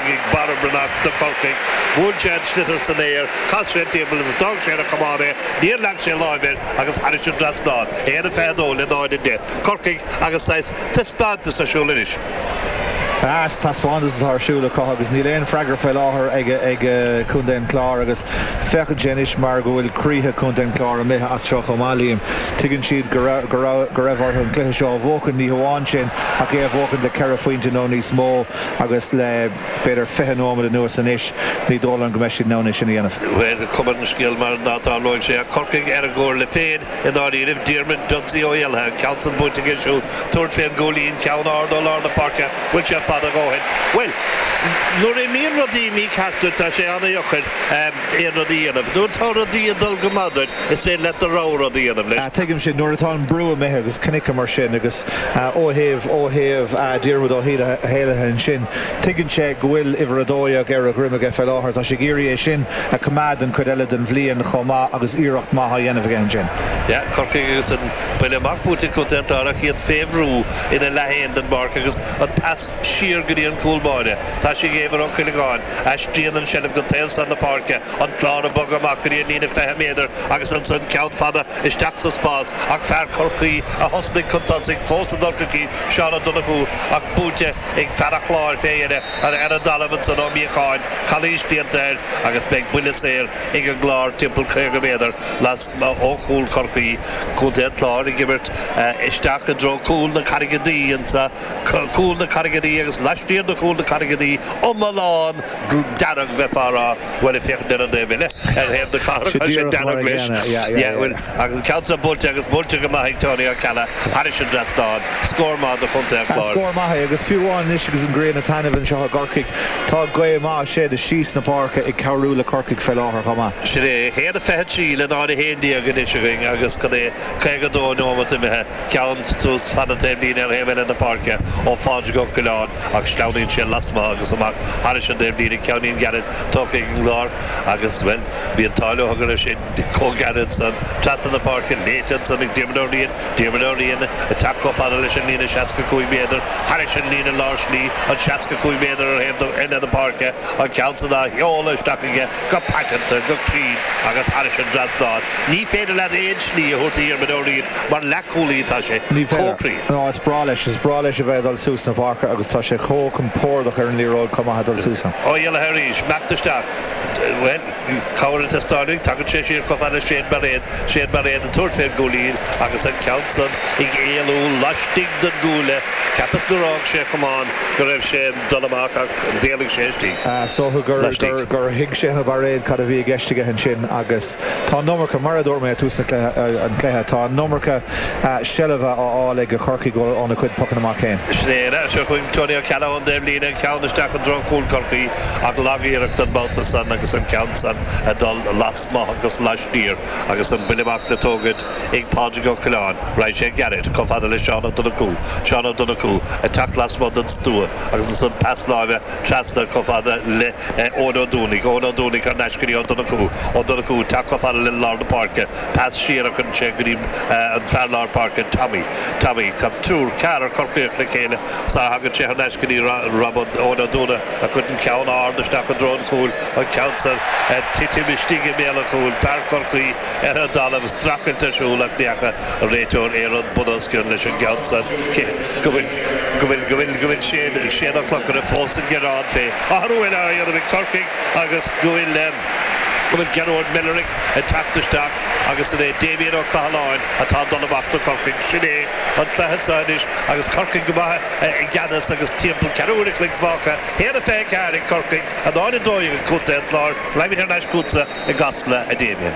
ag Barra Breathnach do Chorcaigh. Bhuail sé an sliotar san aer, chas sé an timpeall agus d'fhág sé ar a chamán é. Níor leag sé láimh air agus thairis an dtrasnán. 1-22 le 0-10. Corcaigh agus saghas taispeántas ar siúl anois. Saghas taispeántas atá ar siúl acu agus níl aon freagra faoi láthair ag Contae an Chláir agus féachann sé anois mar go bhfuil croíthe Chontae an Chláir imithe as seo chomh maith, Liam. Tuigeann siad go raibh orthu an cluiche seo a bhuachan, ní hamháin sin ach é a bhuachan le ceithre phointe nó níos mó. agus le, b'fhéidir, fiche nóiméad anuas anois, ní dóigh liom go mbeidh siad in ann é sin a dhéanamh. Bhuel, cuma ar an scéal mar ná tarlóidh sé ach Corcaigh ar a gcomhairle féin i ndáiríribh, Diarmuid Dudsy Ó hÉalaithe, an ceann san buaite aige siúd, tabhairt fén gcúilín, ceann ard ó lár na páirce, bhfuil sé fada a dhóthain? Bhuel, nuair a imíonn rudaí mícheart duit tá sé ana-dheacair aon rud a dhéanamh. Nuair atá rudaí ag dul go maith duit is féidir leat do rogha rud a dhéanamh leis. Tuigimse, nuair atá an brú imithe agus chonaiceamar sin agus. Ó thaobh, ó thaobh Diarmuid Ó hÉalaithe ansin, tuigeann sé go bhfuil uimhir a dó dhéag ar a dhroim aige fé láthair. Tá sé ag iarraidh é sin a choimeád don chuid eile den bhliain chomh maith agus iarracht maith á dhéanamh aige ansin. Yeah, Corcaigh agus an buille amach buaite ag Contae an Chláir ach iad fé bhrú ina leath fhéin den bpáirc agus an pas siar go dtí an cúl báire. Tá sé ag Éibhear Ó Cuileagáin. Aistríonn an tseilbh go taobh san na páirce, an Clár ag bogadh amach go dtí an líne 20 méadar agus ansan ceann fada isteach sa spás ach fear Chorcaí a thosnaigh chun tosaigh fós do Chorcaigh, Seán Ó Donnchú, ach buaite ag fear an Chláir fé dheireadh ar an dtalamh ansan Ó Míocháin, calaois déanta air agus beidh buille saor ag an gClár timpeall 50 méadar lasmuigh ó chúl Chorcaí. Contae an Chláir ag imirt isteach i dtreo cúl na Carraige Duibhe, ionsaí cúl na Carraige Duibhe agus laistiar de chúl na Carraige Duibhe, iomlán! dearg, bheifeá a rá. Bhuel, ag féachaint ar an dtaobh eile, ar thaobh na cathrach, tá sé dearg leis. Yeah, bhuel, agus an ceann seo buailte agus buailte go maith ag Tony Ó Ceallaigh thairis an dtrasnán. Scór maith do Chontae an Chláir. Scór maith é agus fiú amháin anois agus an ghrian ag taitneamh anseo i gCorcaigh, tá gaoth maith ag séideadh síos na páirce ag cabhrú le Corcaigh fé láthair chomh maith. Sin é. 1:23 le 0:11 anois againn agus cad é 52 neomat imithe, ceann suas fan na taobhlíne ar thaobh eile na páirce ó Phádraig Ó Coileáin. ach sleamhnaíonn sé lasmuigh agus amach thairis an taobhlíne ceann ana-ghairid tógtha ag an gClár agus, bhuel, bhí an t-ádh leo toisc go raibh sé chomh gairid san, trasna na páirce, léite ansan ag Diarmaid Ó Riain, Diarmaid Ó Riain, ag teacht chomh fada leis an líne 65 méadar, thairis an líne lár slí, an 65 méadar ar thaobh eile na páirce, an ceann san á sheoladh isteach aige, go paiteanta, go cruinn agus thairis an dtrasnán. Ní féidir leat aon slí a thabhairt do Dhiarmaid Ó Riain mar leathchúlaí, tá sé chomh cruinn. Ní féidir. Ná is breá leis, is breá leis a bheith ag dul suas na páirce agus tá sé chomh compordach ar an liathróid chomh maith ag dul suas ann. Ó hÉalaithe arís. Imeacht isteach. Bhuel, cabhair ag teastáil uaidh, tagann sé siar chomh fada sin mar aon Shane Barrett ag tabhairt fén gcúilín agus an ceann san ag éalú laistigh den gcuaille, cheapas nuair fhág sé an camán go raibh sé ag dul amach ach d'éalaigh sé laistigh. Is dóigh gur thuig Shane Barrett cad a bhí i gceist aige ansin agus tá an iomarca, mar a dúirt mé ag tús an chluiche, tá an iomarca seilbhe á fháil ag Corcaigh óna chuid pocanna amach fhéin. Sin é anois Tony Ó Ceallaigh ón dtaobh líne, ceann isteach i dtreo chúl Corcaí ach lag-iarracht an babhta san agus an ceann san ag dul amach agus laistiar agus an buille amach le tógaint ag Pádraig Ó Coileáin, raghaidh sé gairid chomh fada le Seán Ó Donnchú, Seán Ó Donnchú ag teacht lasmuigh den stua agus ansan pas láimhe trasna chomh fada le Eoin Ó Dúnaigh, Eoin Ó Dúnaigh thar n-ais go dtí Ó Donnchú, Ó Donnchú ag teacht chomh fada le lár na páirce, pas siar a chuireann sé go dtí an fear lár páirce, Tommy, Tommy tá triúr, ceathrar Corcaíoch le chéile sara thagann sé thar n-ais go dtí Rob, Eoin Ó Dúnaigh a chuireann ceann ard isteach i dtreo an chúil, An ceann san ag titim istigh i mbéal an chúil, fear Chorcaí ar an dtalamh, streachailt ar siúl ach ní fheaca an réiteoir aon rud bunoscionn leis an gceann san. Go bhfuil Shane O'Donnell fós ag gearán. Féach, athrú eile á dhéanamh ag Corcaigh agus go bhfuil Gearóid Millerick ag teacht isteach agus an é Damien Ó Cathaláin atá ag dul amach do Chorcaigh? Sin é an cluiche againn anseo anois agus Corcaigh go maith i gceannas agus timpeall ceathrú uaire chloig fágtha. 124 ag Corcaigh, a haon 12 ag Contae an Chláir, raghaimid thar n-ais chútsa i gCasla, a Damien.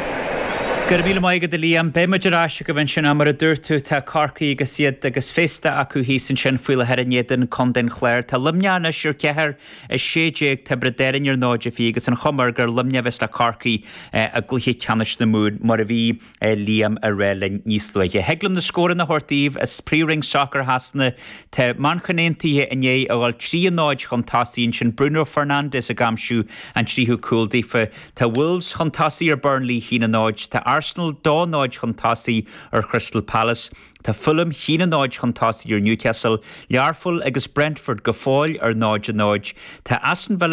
Go raibh míle maith agat, a Liam. Beidh muid ar ais agaibh ansin ach, mar a dúirt tú, tá Corcaigh agus iad agus féasta acu thíos ansin faoi láthair in éadan Contae an Chláir. Tá Luimneach anois ar cheathair is sé déag, Tiobraid Árainn ar 0 de 20 agus an chuma air gur Luimneach a bheas le Corcaigh i gcluiche ceannais na Mumhan, mar a bhí. Liam a rá linn níos luaithe. Thig liom na scóranna a thabhairt daoibh as Príomhroinn Sacair Shasana. Tá Manchain Aontaithe i ndiaidh a dhul trí a náid chun tosaigh ansin, Bruno Fernandes ag aimsiú an tríú cúl daofa. Tá Wolves chun tosaigh ar Burnley, cionn a náid. Tá Arsenal dá náid chun tosaigh ar Crystal Palace. Tá Fulham, cionn a náid chun tosaigh ar Newcastle. Learpholl agus Brentford go fóill ar náid a náid. Tá Aston Villa,